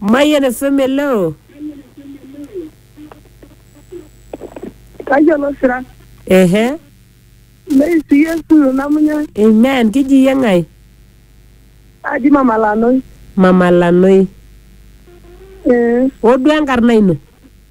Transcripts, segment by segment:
Mayian FM eloo. Tayiolo sira. Ehe. Neisi Yesu namunya. Amen. Kiji iyie ng'ae? Aji Mama Lanoi. Mama Lanoi. Ee. Oduo enkarna ino?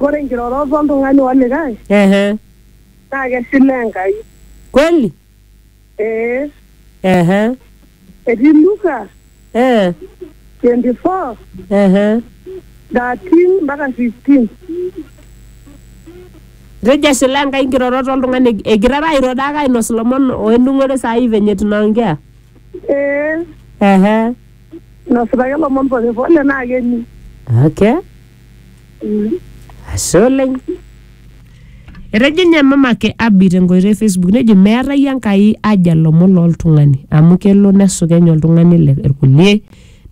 Ore nkirorot oltung'ani olikae Ehe. naa keshilaa Enkai. Kweli? Ee, Ehe. etii Luka Eh. 24, Ehe. 13 mpaka 15. Etejo eshilaa Enkai nkirorot oltung'ani eg- egirara airo dake ainos ilomon oenung'ore saai venye tunaongea. Ee, Ehe. Nasipaki lomon pole pole naa keni. Okay. Mm. Ashe oleng. Etejo ninye mamake Abi tenkoitoi e Facebook nejo meetae Enkai aja lomon loltung'ani amu kelo nesukeny oltung'ani le- irkulie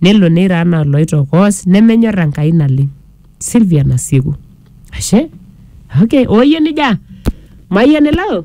nelo neiro anaa oloitokoos nemenyor Enkai naleng. Sylvia Nasieku. Ashe. Okay. Oye nija. Mayian elo.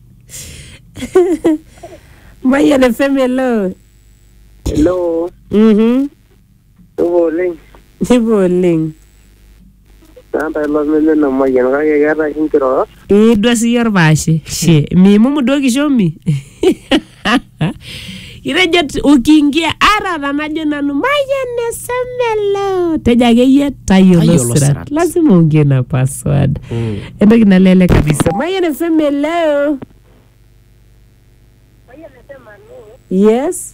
Mayian FM hello. Hello, Mhm. supa oleng. Sipa oleng. Naata ilo meme ina mayian kake keeta oshi nkirorot. Idua siyie orpaashe. She, miimumu duo kishomi. Itejo t- ukiingia ara tanajo nanu mayian esemelo tejo akeyie tayiolo Tayiolo sirat sirat. lazima uingie na password Mm. entoki nalele kabisa mayian esemelo yes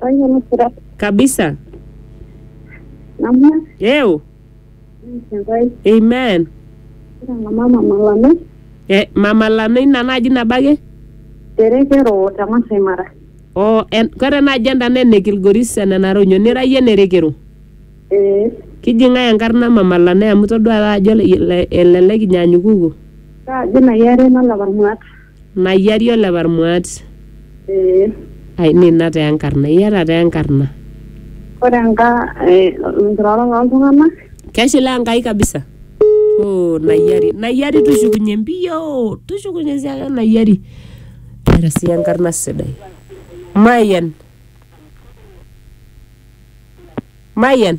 Kwanza ni furaha kabisa namna yeo nitawai amen kira na mama malame e, mama lame ina naji nabake terekero ta Masai Mara. o en, kore naji enda naa ene kilgoris enenare onyo nira yie nerekero Eh, kiji ng'ae enkarna mama lame amu todua taa ajo ele- ele- elelek inyanyukuku kaajo na yare nalapa irmuat. Nayiari ole Parmuat. Ee. Ai nina taa enkarna. Iata taa enkarna. Ore enka eh, nkirorot oltung'anak. Keshilaa Enkai kabisa. Oh, Nayiari. Nayiari tushukunye mbio. Tushukunye sii ake Nayiari. Keeta sii enkarna sidai. Mayian. Mayian.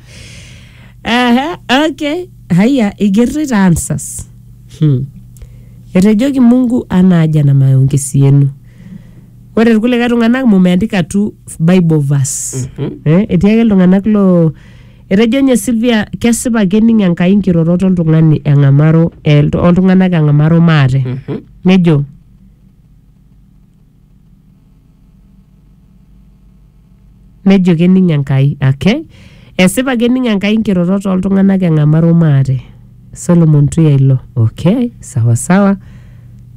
Aha, okay. Haya, igerrita answers. Hmm. Etejoki Mungu ana aja na maongezi yenu. Ore irkulikae tung'anak mumeandika tu Bible verse. Eh, etii ake iltung'anak lo etejo nye Sylvia kesipa kening Enkai nkirorot oltung'ani eng'amaro eh, oltung'anak eng'amaro maate. Nejo Nejo kening Enkai. Okay. Esipa kening Enkai nkirorot ooltung'anak eng'amaru maate. Solomon Tuya ilo. Okay, sawa sawa.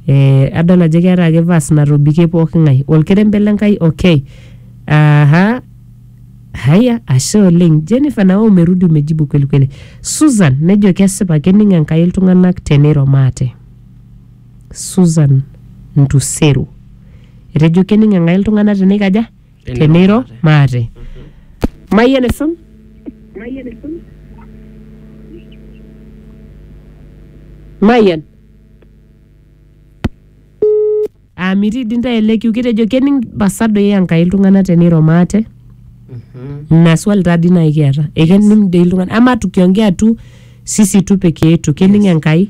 Eh, adol ajo keeta ake verse natobikie pooking'ae. Olkerembe le Nkai okay. Aha. Haya, ashe oleng. Jennifer nawe umerudi umejibu kweli kweli. Susan nejo kesipa kening Enkai iltung'anak teneiro maate. Susan Ntuseru. Etejo kening Enkai iltung'ana teneikaja? Teneiro maate. Mayian esun? Mayian? Aa mitii dii ntae ele kiu kitejo kening pasa doi Enkai iltung'ana teneiro maate? Ina swali taa dii naaji kiata. Ekening doi iltung'ana ama tukiongea tu sisi tu peke yetu kening Enkai?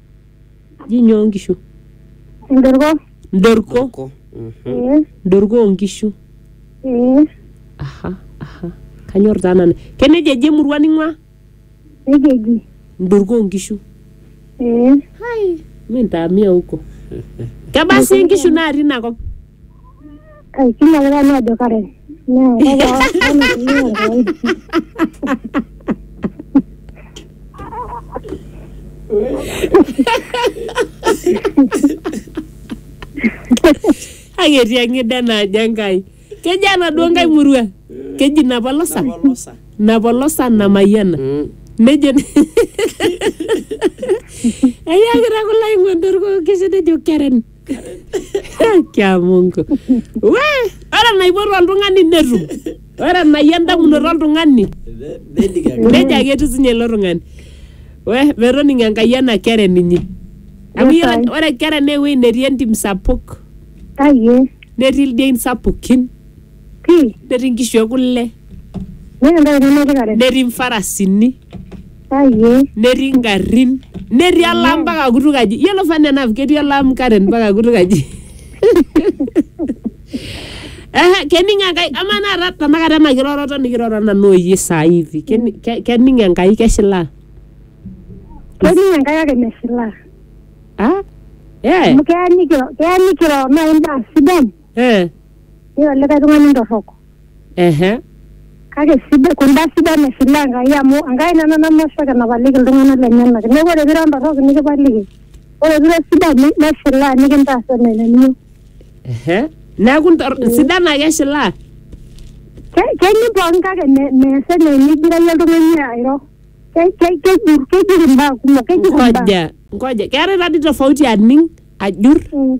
ji nyoo nkishu Ndorko. mdorko Ko. Mhm. Ee. mdorko oonkishu Ee. aha aha kanyor taa nanu keneja eji emurua ning'ua Nejia eji. mdorko oonkishu Ee. mintaamia huko kebaa sii inkishu natii ina kop Ai, kila ake nanu ajo kare. Naa kake awa- kama tumia kawaida. Kake etii eng'ida naajo Enkai. Keji enaduo Nkai murua. Keji Napolosa. Napolosa. Napolosa Namayiana. Mm. Nejo Eyiakita kulo aing'ondorko kejo nejo Karen. kia mungu we ore enaipotu oltung'ani netum ore enayia endamunoto oltung'ani Nedik ake. nejo ake etiu sinye ilo tung'ani we metoning enkai ena kere ninye amu Yes, iyiolo I. ore kere naa ewueji netii entim sapuk Aye. netii ildein sapukin pii netii inkishu e kule meeta entoki nemetii kare netii mfarasini ayie netii ingarrin netii olam mpaka kutuk aji yiolo fun enough ketii olam Karen mpaka kutuk aji Ehe, kening enkai amaa naata tanakata ena kiroroto nikiroro nanu oyie saa hivi keni- ke- kening enkai keshilaa ketii enkai ake mesilaa ah eh amu keya nikiro keya nikiro naaji imbaa sidan Eh, Ore olikae tung'ani torrok. ehe. Kake sidai kunda sidan eshilaa Enkai amu Enkai nena namosho kenapaliki iltung'anak lenyenak. Neeku ore pira ntorrok nikipaliki. Ore pira sidan ni- neshilaa nikintaas enaa enaniyieu. Ehe. Neeku ntor- sidan ake eshilaa. Ke- Kening pookin kake me- mees enaa enigira iyie oltung'ani airo. Ke- ke- Kejur kejur imbaa kumok kejur imbaa. Ngoja, ngoja. Keetae tadi tofauti aning, ajur. Mm.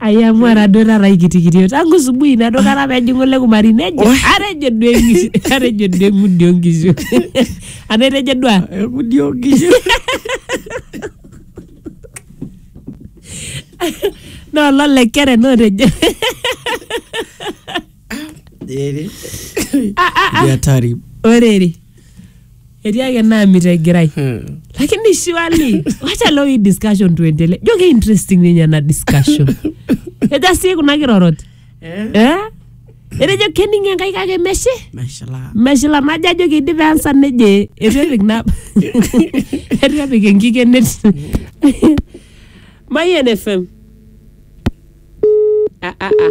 ai amu ara duo taata aikitikitio tangu subuhi nado kata pejing'u le kumari nejo Oi. atejo duo eng'ishu atejo duo eng'udi onkishu ana etejo duo a Engudi onkishu. naa ololekere naa otejo Eri. Ah, ah, ah. Ni hatari. orere etii ake naamit egirai Hmm. lakini surely wacha leo hii discussion tuendelee jo ke interesting ninye ena discussion eja sii kuna kirorot Eh, eh? etejo kening enkai kake meshe mashallah. meshila najo ajo keidip ansa neje etu epik na etu epik enkikenet mayen fm ah, ah, ah.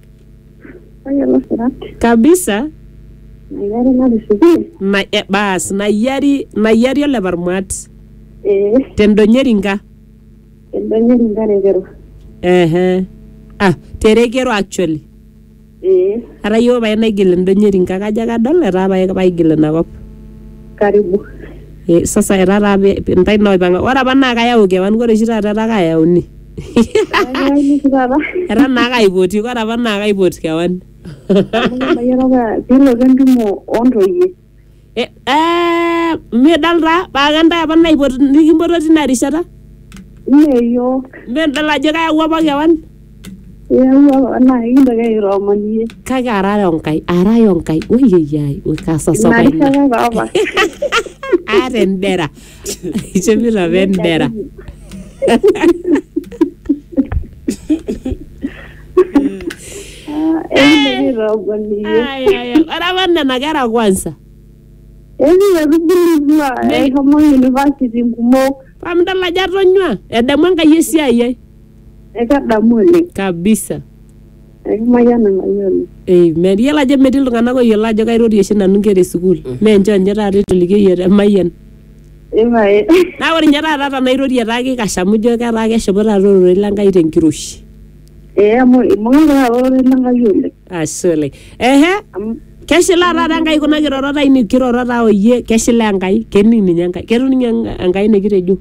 Tayiolo sirat. kabisa Mayiari natisipie. ma, e, baas nayiari nayiari oleparmuat Ee. tendonyeri nka Edonyeri nkarekero. ehe ah terekero actually Ee. atayioo pae naigil endonyeri nka kajo ake adol etaa pae paigil inakop Karibu. e, sasa etaa taa pe- pe- ntae naipang'a ore apa naa kayau kewan ore oshi taata etaa kayauni era naa kaipoti kore apa naa kaipot kewan pilotu entumo ontoyie Eh, eh, midol taa paa kentae apa naipot nikimpoto tina rishata meyiok midol ajo kayawua apa kewan iyawua naa ikintoki airooman iyie kake arare onkai arare onkai oyeyiai ina kasasapa ina rishata taa apa aata endera Ichomito apa endera. Ore apa nena kera kwanza. Eshomo university kumok. Pamidol ajo atonyua. Edamu Enkai esiai ai. Ekadamu oleng. Kabisa. Aikimayian emayiolo. Ei, meyiolo ajo metii iltung'anak oyiolo ajo kairorie oshi nanu nkera esukuul. Mee nchoo ninye taata eitolikio iyiook emayian. Ipae. Naa ore ninye taata tenairorie etaa keikash amu ijo ketaa keshipa taata ororei le Nkai tenkiroshi. Ee amu ibung'a taata ororei le Nkai oleng. Ashe oleng. Ehe, Amu keshilaa taata Enkai kuna kirorot ainei kiroro taa o iyie keshilaa Enkai, kening ninye Enkai. Ketum ninye Enkai nikitejo.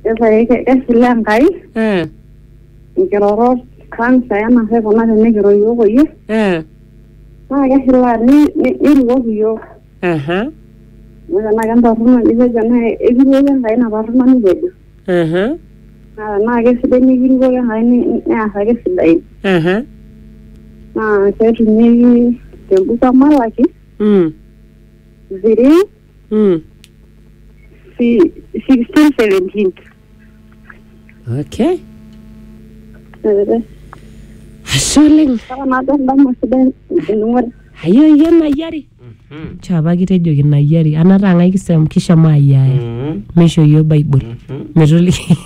ipae keshilaa Enkai. Eh. nkirorot kansa ena hwe kuna tenikiro iyiook oyie Eh, naa keshilaa ni- ni- nirikoki iyiook aha, amu tenaa kentorrono nipejo naa ekirikoki Enkai ina torrono nipejo aha, naa tenaa kesidai nikirikoki Enkai ni- ni- neas ake sidain aha, naa ketumieki tembuku e Malaki mm, three mm. si- sixteen seventeen okay ashe oleng ayo iyie nayiari Mhm. chapa kitejoki nayiari anataa ng'ae kisem kishomo ayiaya Mhm. meisho yiok bible Mhm. metoliki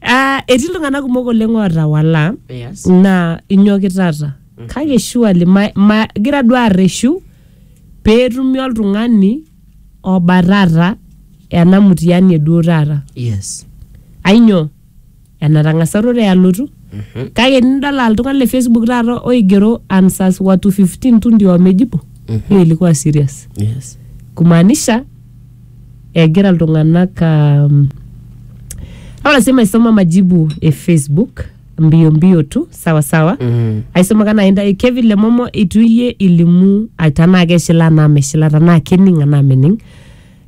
Ah, etii iltung'anak kumok oleng ootawala Yes. naa inyoki taata kake shuali magira duo arreshu peetumi oltung'ani oba taata ena mtihani eduo taata yes ainyoo enatang'asa ororei alotu Mhm. kake nidol aa iltung'anak le facebook taata oigero answers watu 15 tu ndio wamejibu Mhm. hiyo ilikuwa serious yes kumaanisha egira iltung'anak um, au lazima isoma majibu e facebook mbio mbio tu sawa sawa Mm. aisumaka naa intae kevin lemomo itu iyie ilimu ah, tanaa keshila anaa meshila tanaa kening anaa mening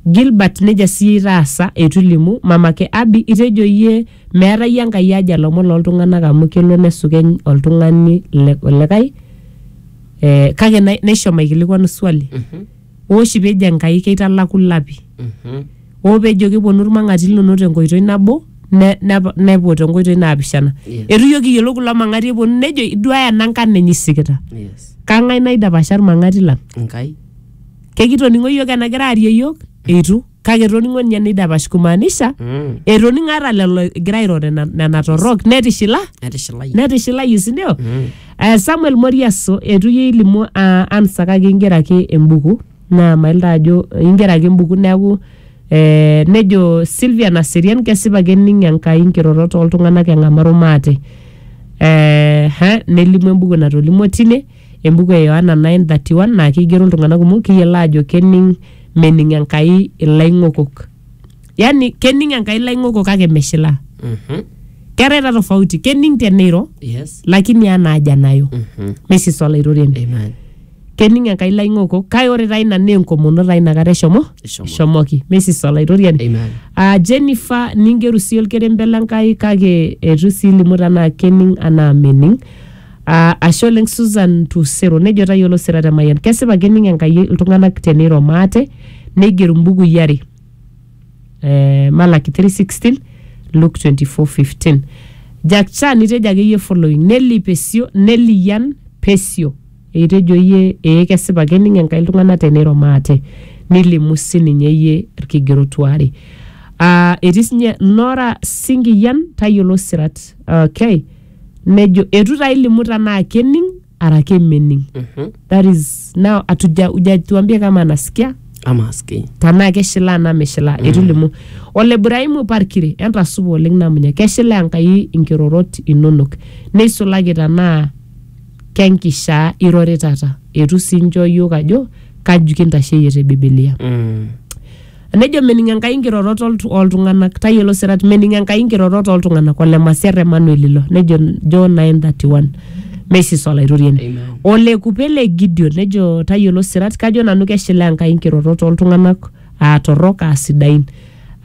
gilbert nejia siyie itaasa eitu ilimu mamake abi itejo iyie meeta iyie enkai aja lomon loltung'anak amu kelo nesukeny oltung'ani le- olikae eh, kake nai- naisho maikilikwanu swali ooshi pee ejo Enkai keitalaku lapi, Mhm. oo pee ejo kepuonu ilmang'ati linono tenkoitoi nabo ne- nep- nepuo tenkoitoi naapishana. Yes. Eitu iyiook kiyiolou kulo mang'ati epuonu nejo iduaaya ena nkarna enye isikita. Yes. Kang'ai naidapasha ilmang'ati lang? Enkai. Kekitoning'o iyiook enagira aarie iyiook? Eitu. kake etoning'o ninye neidapash kumaanisha Mm. etoning'o ata lelo egira airo nena nena torrok netishila Etishilayu. netishilayie sindio Mm. Eh, samuel moriaso etu iyie ilimu ah, ansa kake ingera ake embuku naa mailta ajo ingera ake embuku neaku eh, nejo silvia naserian kesipa kening enkai nkirorot oltung'anak eng'amaru maate eh, ha, nelimu embuku natolimuo tine embuku e Yohana 9:31 naa keigero iltung'anak kumok kiyiolo aajo kening mening Enkai ilaing'okok. Yaani kening Enkai ilaing'okok kake meshilaa. Mhm. Keetae taa tofauti, kening teneiro Yes. lakini enaa aja nayo. Mhm. Mesis olaitoriani. Amen. Kening Enkai ilaing'okok kake ore taa ina naa enkomono taa inakata eshomo Eshomo. eshomoki. Mesis olaitoriani. Amen. Ah, Jennifer ningeru sii olkerembe le Nkai kake eitu sii ilimu tenaa kening anaa mening. Aa, ashe oleng Susan Tusero, nejo tayiolo sira te Mayian. Kesipa kening Enkai iltung'anak teneiro maate, neiger imbukui are. Eh, Malaki 3:16, Luke 24:15. Jack Chan nitejo ake iyie following, Nelly Pesio, Nelly Yan Pesio. Eitejo iyie, ee kesipa kening Enkai iltung'anak teneiro maate. Nilimu sininye iyie ilkigerot waare. Ah, etii sinye Nora Singiyan, tayiolo sirat. Okay. nejo etu taa ilimu tanaa kening ara kemening Mhm. that is now atuja ujatuambia kama anasikia ama aski tanaa keshilaa naa meshilaa mm. etulimu ole Ibrahimu Parkiri entasupa oleng namunya keshilaa Enkai inkirorot inonok neisulaki tanaa kenkishaa iroritata etu sii inchoo iyiok ajo kaji kintasheyie te Bibilia Mm. Nejo mening Enkai nkirorot oltu- ooltung'anak. Tayiolo sirat, mening Enkai nkirorot ooltung'anak. Ole Masiar Emmanuel ilo. Nejo John 9:31. Mesis olaitoriani. Amen. Ole kupe le Gideon nejo tayiolo sirat kajo nanu keshilaa Enkai nkirorot ooltung'anak aa torrok aa sidain.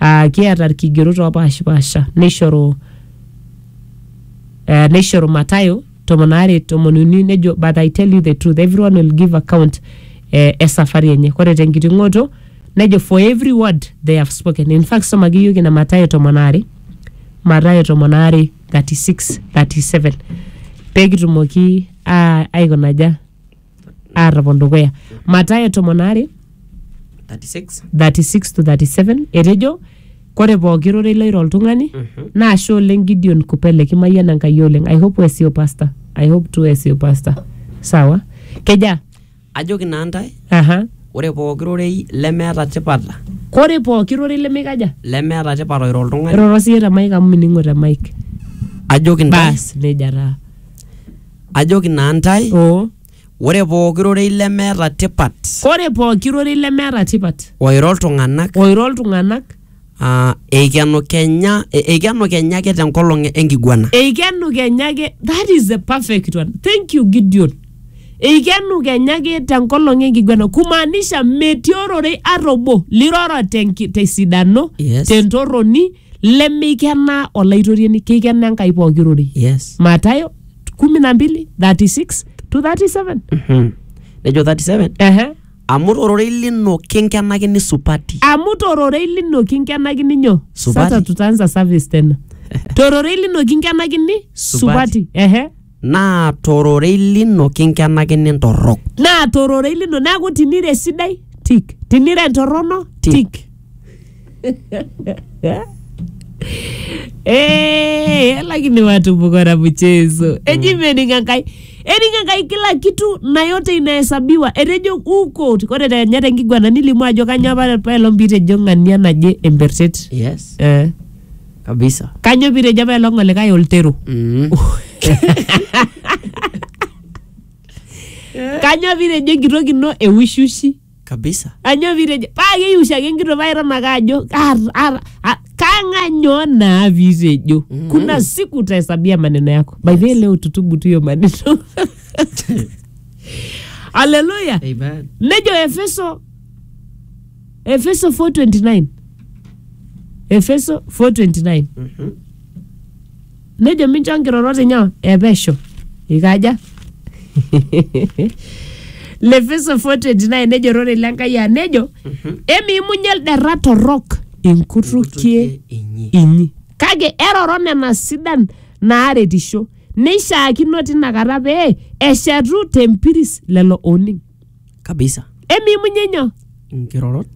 Aa kiata ilkigerot oopaashipaasha neishoru eh, neishoru Matayo tomon aare tomon uni nejo but I tell you the truth everyone will give account eh, esafari enye kore tenkiting'oto nejo for every word they have spoken in fact somaki iyiok ina Mathayo tomon aare Mathayo tomon aare 36 37 pekitumoki ah, aikonaja aatopon dukuya matayo tomon aare 36 36 to 37 etejo kore pooki rorei loiro oltung'ani naa ashe oleng gideon kupele kimayiana enkai oleng i hope wesio pasta i hope tu wesio pasta sawa keja ajoki naa ntae aha ore pooki rorei lemeeta tipat kore pooki rorei lemeikaja lemeeta tipat oiro oltung'ani roro siye te mike amu mining'o te mike ajoki ntae bas neja taa Ajoki naa ntae, Oo. ore pooki rorei lemeeta tipat Kore pooki rorei lemeeta tipat oiro iltung'ana oiro iltung'ana aa eikenu kenya e- eikenu kenya ake tenkolong enkiguana. eikenu kenya ake that is the perfect one thank you Gideon eikenu kenya ake tenkolong enkiguana kumaanisha metii ororei ata obo liroro tenki- tesidano Yes. tentorroni lemeikenaa olaitoriani keikenaa enkai pooki rorei yes matayo 12 36 to 37 Mhm. nejo 37 Ehe. amu tororei lino kinkenakini supati amu tororei lino kinkenakini nyo Supati. sasa tutaanza service tena tororei lino kinkenakini Supati. supati ehe Naa to rorei lino kinkenakini ntorrok. naa tororei lino neaku tinira esidai tik tinira entorrono Tik. tik Eh, lakini watu mko na mchezo eji mening enkai ening enkai kila kitu na yote inahesabiwa etejo uko ore tenya tenkiguana nilimu ajo kanyoo apa paelong pitejo ng'ania naje embertet Yes. eh. kabisa Kanyo pire japa elong olikae oltero. Mm. Kanyo pire jo enkitok ino eushushi. kabisa Kanyo pire jo paa keiushi ake enkitok paa iton ake ajo "Ar- ar- a- kang'anyo naa pire jo. Kuna siku utahesabia maneno yako. By the way leo tutubu tu hiyo maneno. Haleluya. Amen. Nejo Efeso Efeso 4:29 Efeso 4:29 Mhm. nejo mincho nkirorot inyo epesho ikaja Lefeso 4:29 nejo rore le Enkai aa nejo Mhm. emiimunye lderra torrok inkutukie inyi inyi kake eroro nena sidan naaretisho neishaakino tinakata pee eshetu tempiris lelo ooning kabisa emimunye nyoo nkirorot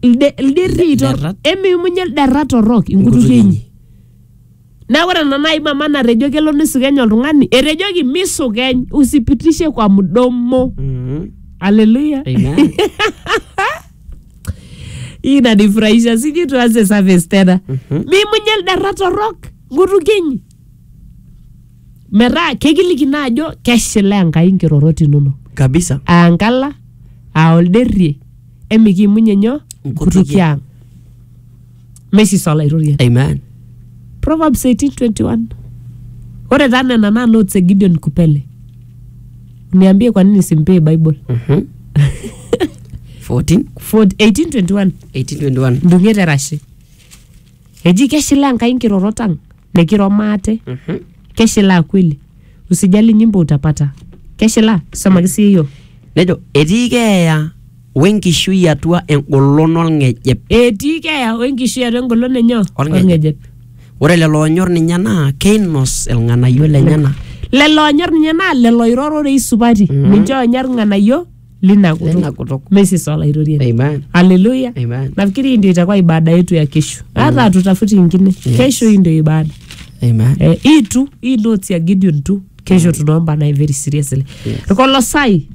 Ilde- ilderri tor- Ilderrat. emimunye ilderra torrok inkutukie inyi na ore ena nai mama natejo kelo nisukeny oltung'ani etejoki misukeny usipitishe kwa mdomo mm. haleluya Amen. hii inanifurahisha sijui tuanze service tena mimunye ilderra torrok nkutukie inyi metaa kekiliki naa ajo keshilaa enkai nkirorot inonok kabisa aa nkala aa olderrie emikiimunye nyoo Nkutukie. nkutukie ang mesis olaitoriani amen Proverbs 18:21. Ore taa nena naa notes e Gideon Kupele. Niambie kwa nini simpee Bible. Mhm. 14 For 18:21 1821 ndung'et erashe. Eji keshilaa Enkai nkirorot ang nikiro maate. Mhm. Keshilaa kweli. Usijali nyimbo utapata. Keshilaa. Somaki sii yiok. Nejo etii keeya wenkishui atua engolon olng'ejep. Etii keeya o enkishui atua engolon enyo Olng'ejep. olng'ejep. Ore lelo oonyor ninye naa keinos ilng'anayio lenyena. Lelo oonyor ninye naa lelo oiro rorei supati. Ninche oonyor ilng'anayio lina kutuk Lina kutuk. mesis olaitoriani Amen. haleluya Amen. nafikiri hii ndio itakuwa ibada yetu ya kesho hata hatutafuti ingine kesho hii ndio ibada Amen. eh, hii tu hii notes ya gideon tu kesho tunaomba naye very seriously Yes. irkolosai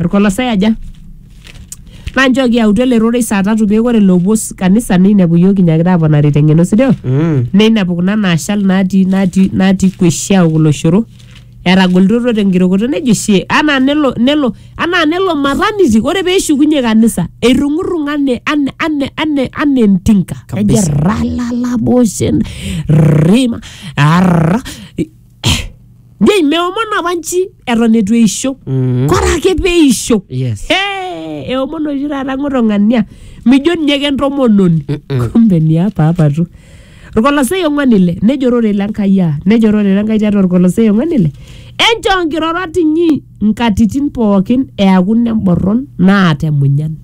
irkolosai aja nanchooki autu ele rorei saa tatu pee ore loopuo s- kanisa neinepu iyiook inyaakita aponari teng'eno sideo Mm. neinepu kuna naashal natii natii natii kueshiau kulo shoro etagolitoto tenkirokoto nejo shie anaa nelo nelo anaa nelo mataniti ore peeshukunye kanisa eirrung'urrung'a ane ane ane ane ane entinka ejo Kabisa. ralalaboshen rima arra jei meomon apa nchi eton etu eisho Mm. kore ake peisho Yes. Hey, eomon oshi taata ng'oto ng'ania mijo ninye kentomononi Mm-mm. kumbe niapa apa tu Irkolosai ong'uan ile, nejo ororei le Nkai aa, nejo ororei le Nkai tiatua Irkolosai ong'uan ile, enchoo nkirorot inyi nkatitin pookin eaku nemborron naata emunyan.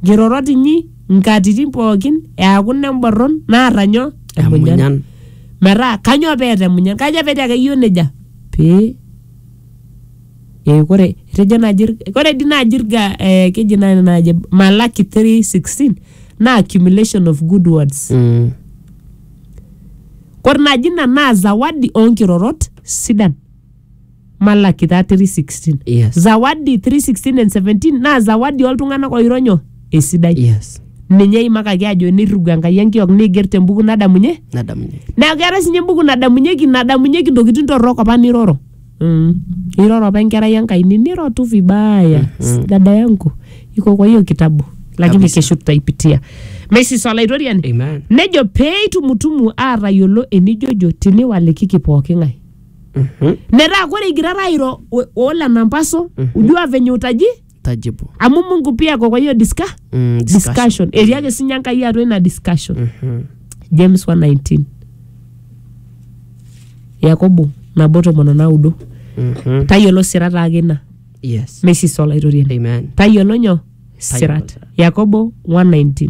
Nkirorot inyi nkatitin pookin eaku nemborron naata nyoo? Emunyan. Metaa kanyoo peeta emunyan? Kaja pee etii ake iyiook nejia? Pee Eh, kore etejo naaji ir- kore dii naaji irga eh, keji naaji naaji Malaki 3:16 naa accumulation of good words Mm. kore naaji ina naa zawadi oonkirorot sidan Malaki taa 3:16 Yes. zawadi 3:16 and 17 naa zawadi oltung'anak oironyo esidai Yes. ninye eimakaki ajo nirrigu Enkai enkiok neiger tembuku nadamunye Nadamunye. neeku keetae sinye embuku nadamunyeki nadamunyeki intokitin torrok apa niroro Mm. Iroro apa enkerai Enkai niniro tu vibaya mm. dada yangu iko kwa hiyo kitabu lakini Kabisa. kesho tutaipitia Mrs. Olaitoriani Amen. nejo pee itumutumu aatayiolo enijojo tiniwalikiki pooki ng'ae Mhm. metaa kore igirara airo o- oolenampaso ujua venye utaji tajibu amu mungu pia ako kwa hiyo diska Mm, discussion etii ake sinye enkai atua ina discussion Mhm. james 119 yakobo nabo tomon onaudo Mhm. tayiolo sirat ake ina yes mesisa olaitoriani amen tayiolo nyoo Tayiolo sirat sirat. yakobo 119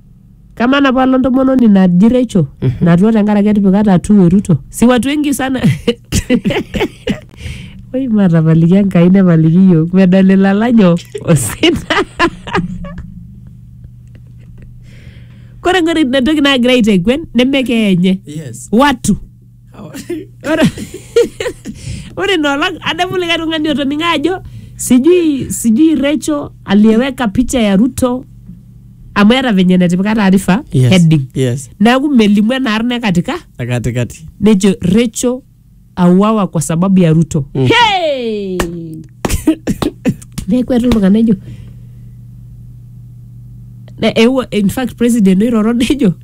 Kama na palo ntomononi naji Rachel natua tenkaraki etipika tatuu e Ruto. Si watu wengi sana. Oi matapaliki Enkai nepaliki yiok medol ilalajo osina. Kore ng'ore entoki nagira aiteguen neme keenye. Yes. Watu. Ore- ore inoolong adamu likae tung'ani otoning'o ajo sijui sijui Rachel aliyeweka picha ya Ruto amu eeta venye netipika taarifa Yes. heading Yes. neeku melimu ena arna e katika Na katikati. nejo Rachel auawa kwa sababu ya Ruto Mm. hey! neeku etu iltung'anak ejo Ne- eewuo in fact president oiroro nejo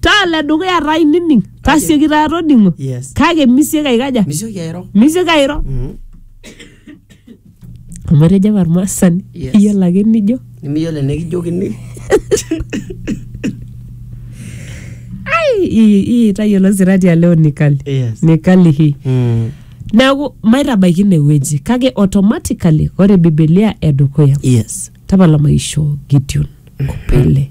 taa le dukuya taa inining tasioki taa toding'o Yes. kake misioki aikaja Misioki airo. misioki airo Mhm. amu etejo apa irmaasani Yes. iyiolo ake nijo Nimiyiolo enikijokini. "Ai, ii- ii tayiolo sirati aleo nikali Yes. nikali hii Mm. neeku maitabaiki inewueji kake automatically ore bibilia edukuya Yes. tapala maisho gideon kopele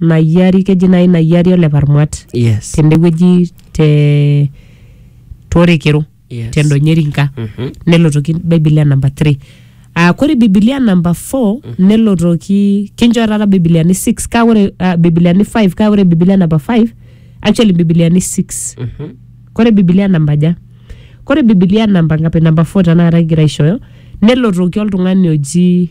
nayiari keji nai nayiari ole parmuat yes tendewueji te torekero Yes. tendonyeri nka Mhm. nelotoki bibilia namba 3 Uh, kore bibilia namba 4 nelotoki kinchoo taata bibiliani 6 kaa ore uh, bibiliani 5 kaa ore bibilia namba 5 actually bibiliani 6 Mhm. kore bibilia namba ja kore bibilia namba ngapi namba 4 tanakata kigira aishooyo nelotoki oltung'ani oji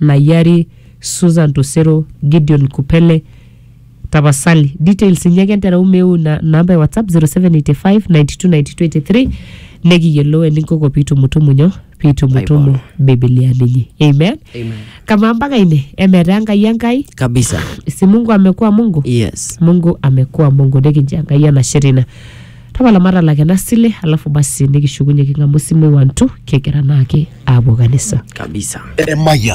Nayari, Susan Tosero, Gideon Kupele, tapasali details inyi ake entereu meu ina namba e whatsapp 0785929283 nekiyiolou eninkoko piitumutumu nyoo piitumutumu bibilia ninyi amen Amen. kamaa mpaka ine emetaa enkai enkai kabisa si mungu amekuwa mungu yes mungu amekuwa mungu nikincho enkai enashe tina tapala matalak ena sile alafu basi nikishukunye king'amu simui wantu kigira naake aapuo kanisa kabisa Eremaya